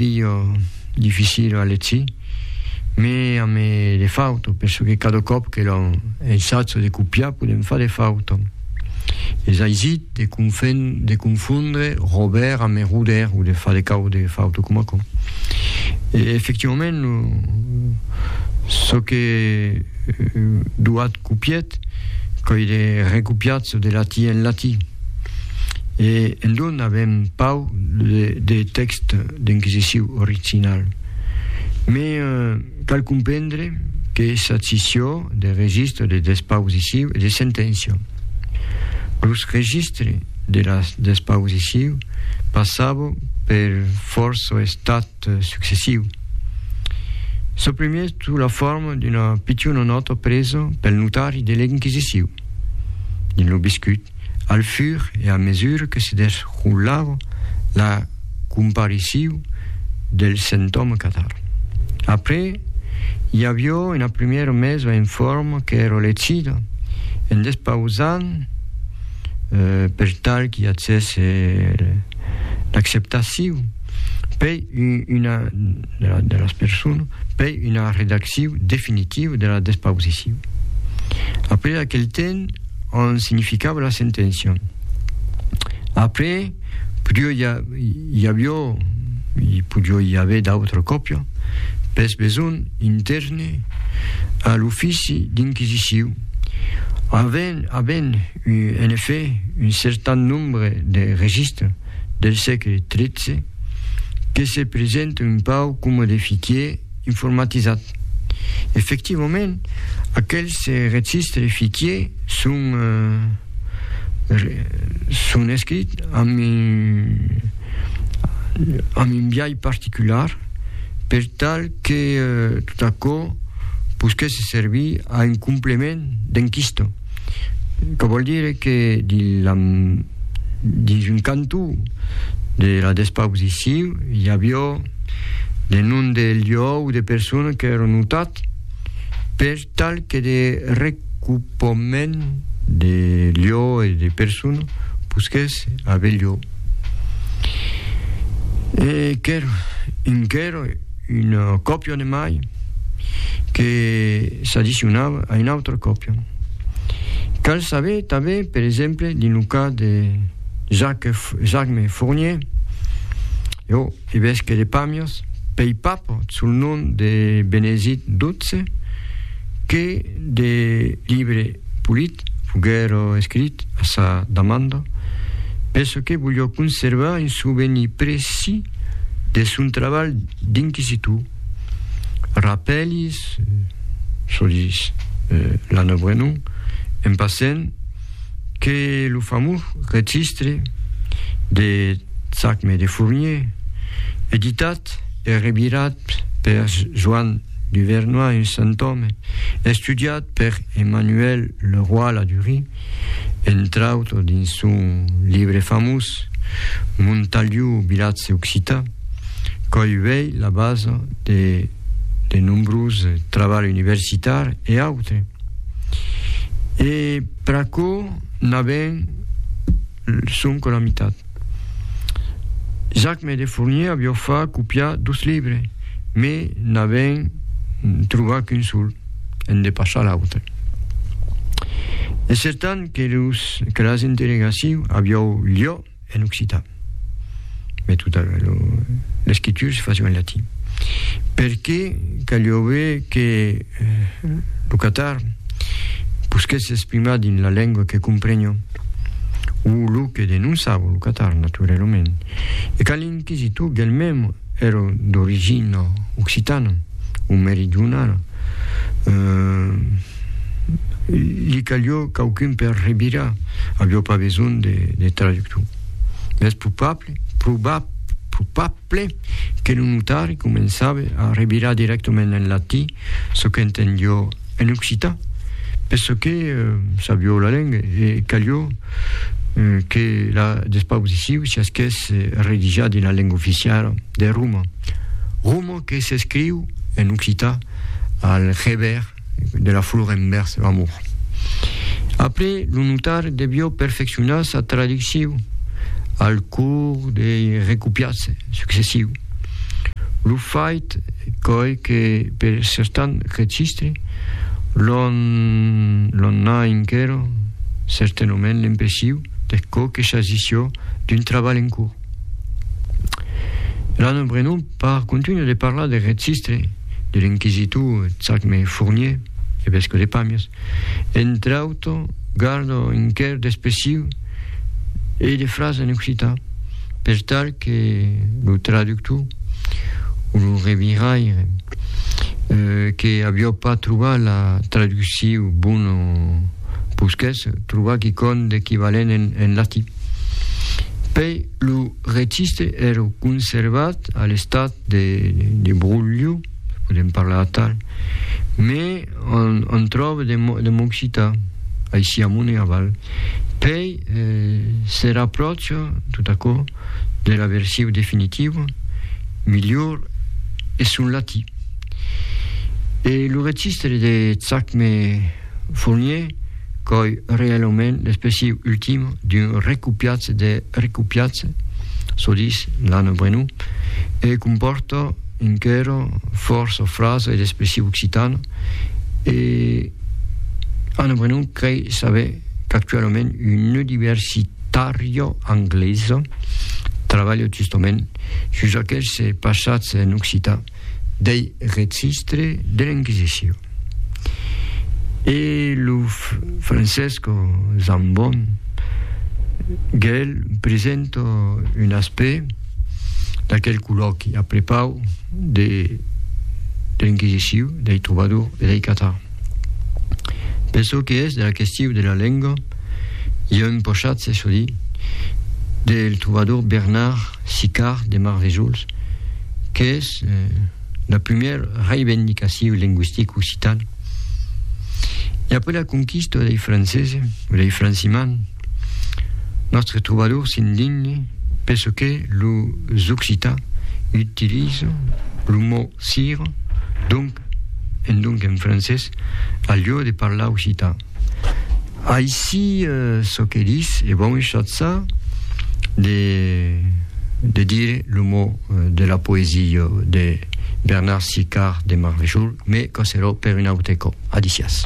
Pilho dificil a leci, me a me de fauto, penso que cada còp que lo ensatjo de copiar podem far de fauto. Es aisit de confen de confondre rober a me roder o de far de cau de fauto com aquò. E efectivament lo çò que doat copiet coi de recopiar çò de lati en lati. E en don avèm pauc de tèxt d'enquisiciu original. Me cal comprendre que sa scissió de registre de despausiciu e de senténcia. Los registres de las despausiciu passava per fòrça estats successiu. Çò primièr sota la forma d'una pichona nòta presa pel notari de l'enquisiciu. Dins lo biscut, al fur e a mesura que se desrolava la compariciu del sentòma catar. Après, i avió una primièra mesa en forma qu'èra lecida en despausant per tal qu'i atzèsse l'acceptaciu, pei una de la, de las personas per una redacciu definitiva de la despausiciu. Après aquel temps, on significava la sentencion. Après, podio i, a, i avió, i podio i aver d'autra còpia, pes besonh intèrne a l'ofici d'inquisiciu, avent, avent en effet un certan nombre de registres, del sègle XIII que se presente un pauc coma de fichier informatizat. Efectivament, aquels registres fichier son, eh, son escrits amb un amb un biais particular per tal que eh, tot aquò posquèsse servir a un complement d'enquista. Quò vòl dire que dins un cantó de la despausicion i avió de nom de lieu o de persona qu'èron notats per tal que de recupament de lieu e de persona posquèsse aver lieu. E qu'èra un qu'èra Un copion emai que s'addicionava a un autre copion. Cal saber tanben, per exemple, dins lo cas de Jacques-Jacme Fournier, jo evesque de Pamiers, pei papot sul nom de Benezit xii, que de libre Polit foguèt escrit a sa demanda perçòque volió conservar un sovenir precis de son trabalh d'inquisitor. Rapèlis, çò dis Lana Brenon, en passent, que lo famós registre de Tzachme de Fournier, editat e revirat per Joan Duvernoy, un sant òme, estudiat per Emmanuel Le Roy Ladurie, entre autres dins son libre famós Montaliu vilatge occitan, qu'òi uèi la basa de de nombrós trabalh universitar e autre. E pr'aquò n'avèm sonque la mitat. Jacme de Fournier avió fa copiar dos libres, me n'avèn trobar qu'un sol, en de passar l'autre. E certan que, los, que las interrogacions avió lieu en occitan, me tota l'escritura se fació en latin. Per que caliove que lo Qatar posquèt s'exprimar dins la lengua que comprenho, o lo que denonçava lo Qatar, naturalament, e quand l'inquisitor d'el-mem èra d'origina occitana o meridionala, li calió quauqu'un per revirar, avió pas besonh de traductor. Mès probable, probab, probab, Ple, que lo notari començabe a revirar dirèctament en latí çò qu'entendió en occitan, per çò que sabió la lenga, e calió que la despausiciu siasqués redijar dins la lenga oficiala de Roma, Roma que s'escriu en occitan al revèrs. de la flor envèrs l'amor. Après, lo notar devió perfeccionar sa traducciu al cors dei recopiats successius. Lo fait qu'òi que per certan registre l'on n'a enquero certainement l'impressiu de çò que s'agissió d'un trabalh en cors. L'Anne Brenon Par contunhar de parlar de registre de l'inquisitor Chacme Fournier, evesco de Pàmias, entre auto, gardo un quer d'expressiu e de frasa en occitan, per tal que lo traductor o lo reviraire que avió pas trobat la traducciu bona posquèsse trobar quicòm d'equivalent en latin. Pei Lo registre ère conservat a l'estat de, de brolho, se podem parlar atal, me on, on tròbe de, de m'occitar, aicí amont e aval, pei eh, se rapròcha tot aquò de la versiu definitiva, milhor eth son latí. E lo registre de Chacme, Fournier, qu'òi reelhaument l'expressiu ultim d'un recopiatge de recopiatge, çò ditz Lana Brenou, e compòrta enquera fòrça frasa e d'expressiu occitana, e Anna Brenou crei saber qu'actuelament una universitària anglesa trabalha justament sus aqueste passatge en occitan. dei registre de l'Inquisicion. E lo Francesco Zambon gel presento un aspect d'aquel colloqui a prepau de l'Inquisicion, dei trobadors e dei catar. Per çò que es de la question de la lenga, i a un pochatz es o di del trobador Bernard Sicard de Marvejols, qu'es la primièr reivendicaciu lingüistic occitan. E après la conquista dei francese o dei franciman, nòstre trobador s'indigne per çò que los occitans utilizan lo mot sira, donc, endonc en francés, al lieu de parlar occitan. Aicí, çò que dis, e bon echatza de, de dire lo mot de la poesia de Bernard Sicard de Marvejol, me coserò per un aute còp. Adicias.